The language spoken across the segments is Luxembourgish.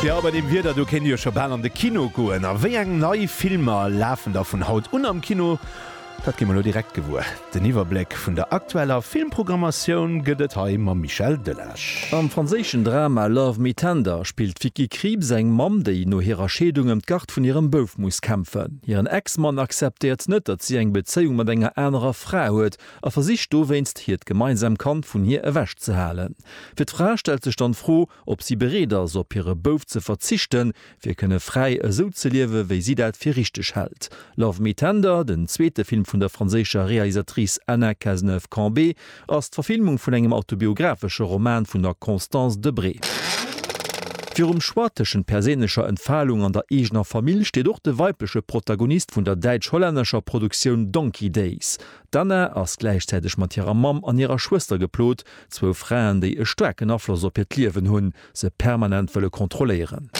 Jo, bei deem Wieder do kéint ee jo scho bal an de Kino goen. A wéi eng nei Filmer lafen da vun haut un am Kino? Dat gi mer elo direkt gewuer. Den Iwwerbléck vun der aktueller Filmprogrammatioun gëtt et hei mam Michel Delage. Am franséischen Drama Love Me Tender spillt d'Vicky Krieps eng Mamm, déi no hirer Scheedung ëm d'Gard vun hirem Bouf muss kämpfen. Hiren Ex-Mann acceptéiert net, datt si eng Bezéiung mat enger anerer Fra huet a versicht dowéinst hiert gemeinsam Kand vun hir ewech ze halen. Fir d'Fra stellt sech dann d'Fro, ob si bereet ass, op hire Bouf ze verzichten, fir kënne fräi esou ze liewe wéi si dat fir richteg hält. Love Me Tender, den zweete Film vun der franséischer Realisatrice Anna Cazeneuve-Cambé, ass d'Verfilmung vun engem autobiographesche Roman vun der Constance Debré. Virum Choix tëschent perséinlecher Entfalung an der eegener Famill steet och de weibleche Protagonist vun der däitsch-hollännescher Produktioun Donkey Days. D'Anna ass gläichzäiteg mat hirer Mamm an hirer Schwëster geplot, zwou Fraen, déi e staarken Afloss op hiert Liewen hunn, se permanent wëlle kontrolléieren.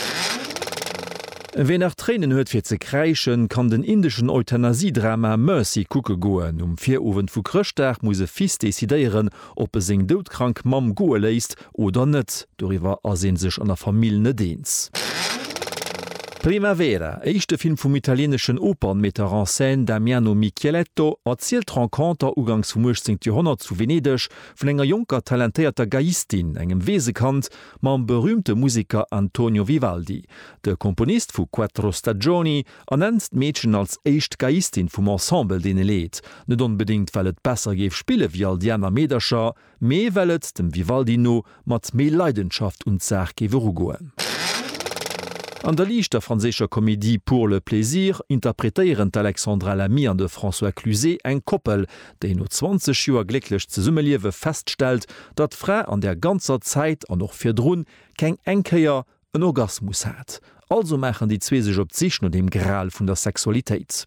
Ween nach Tréinen huet fir ze kräischen, kann den indeschen Euthanasie-Drama Mercy kucke goen. Um Virowend vu Chrëschtdag muss e Fils decidéieren, ob e seng doudkrank Mamm goe léisst oder net, doriwwer ass ee sech an der Famill net eens. Primavera, éischte Film vum italieneschen Opernmetteur en scène Damiano Micheletto, erzielt d'Renconter ugangs vum 18. Joerhonnert zu Venedeg vun enger jonker talentéierter Geiistin, engem Weesekand, mam berüümte Museker Antonio Vivaldi, de Komponist vu Quattro Stagioni, ernennt d'Meedchen als éischt Geiistin vum Ensemble, deen e leet, net onbedéngt well et besser géif spille wéi all déi aner Meedercher, mee well et, dem Vivaldi no, mat méi Leidenschaft un d'Saach géif erugoen. An der liichter franséischer Komedie Pour le plaisir interpretéieren d'Alexandra Lamy an de François Cluzet eng Koppel, déi no 20 Joer glécklech Zesummeliewe feststellt, datt d'Fra an där ganzer Zäit an och virdrun keng eng Kéier, en Orgasmus hat. Also maachen déi zwee sech op d'Sich no dem Gral vun der Sexualitéit.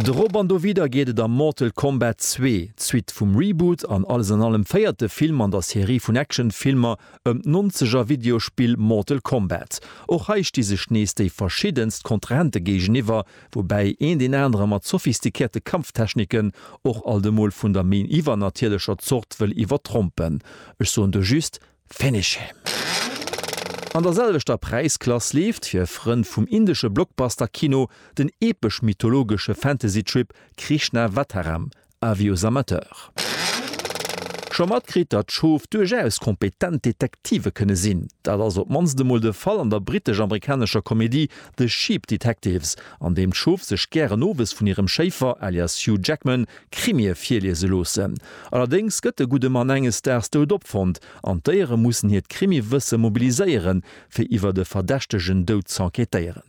Drop an dowidder geet et a Mortal Kombat zwee, d'Suite vum Reboot an alles an allem véierte Film an der Serie vun Actionfilmer ëm d'Nonzeger-Videospill Mortal Kombat. Och hei sti sech nees déi verschiddenst Kontrahente géigeniwwer, woubäi een deen anere mat sophistikierte Kampftechniken och alt emol vun der méi iwwernatierlecher Zort wëll iwwertrompen. Ech soen do just, Finish him! An der selwechter Präisklass leeft fir Frënn vum indesche Blockbuster-Kino den epesch-mythologesche Fantasy-Trip Krishnavataram, Avis aux amateurs. Scho matkritt, datt Schof duerchaus kompetent Detektive kënne sinn? Dat ass op d'mannst emol de Fall an der brittesch-amerikanescher Komedie The Sheep Detectives, an deem d'Schof sech gären owes vun hirem Schéifer alias Hugh Jackman Krimie virliese loossen. Allerdéngs gëtt de gudde Mann enges Daags dout opfonnt an d'Déiere mussen hiert Krimiwësse mobiliséieren, fir iwwert e verdächtegen Doud z'enquêtéieren.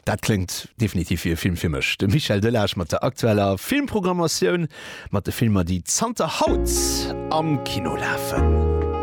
Dat kléngt definitiv wéi e Film fir mech. De Michel Delage mat der aktueller Filmprogrammatioun, mat de Filmer, déi zanter haut am Kino lafen.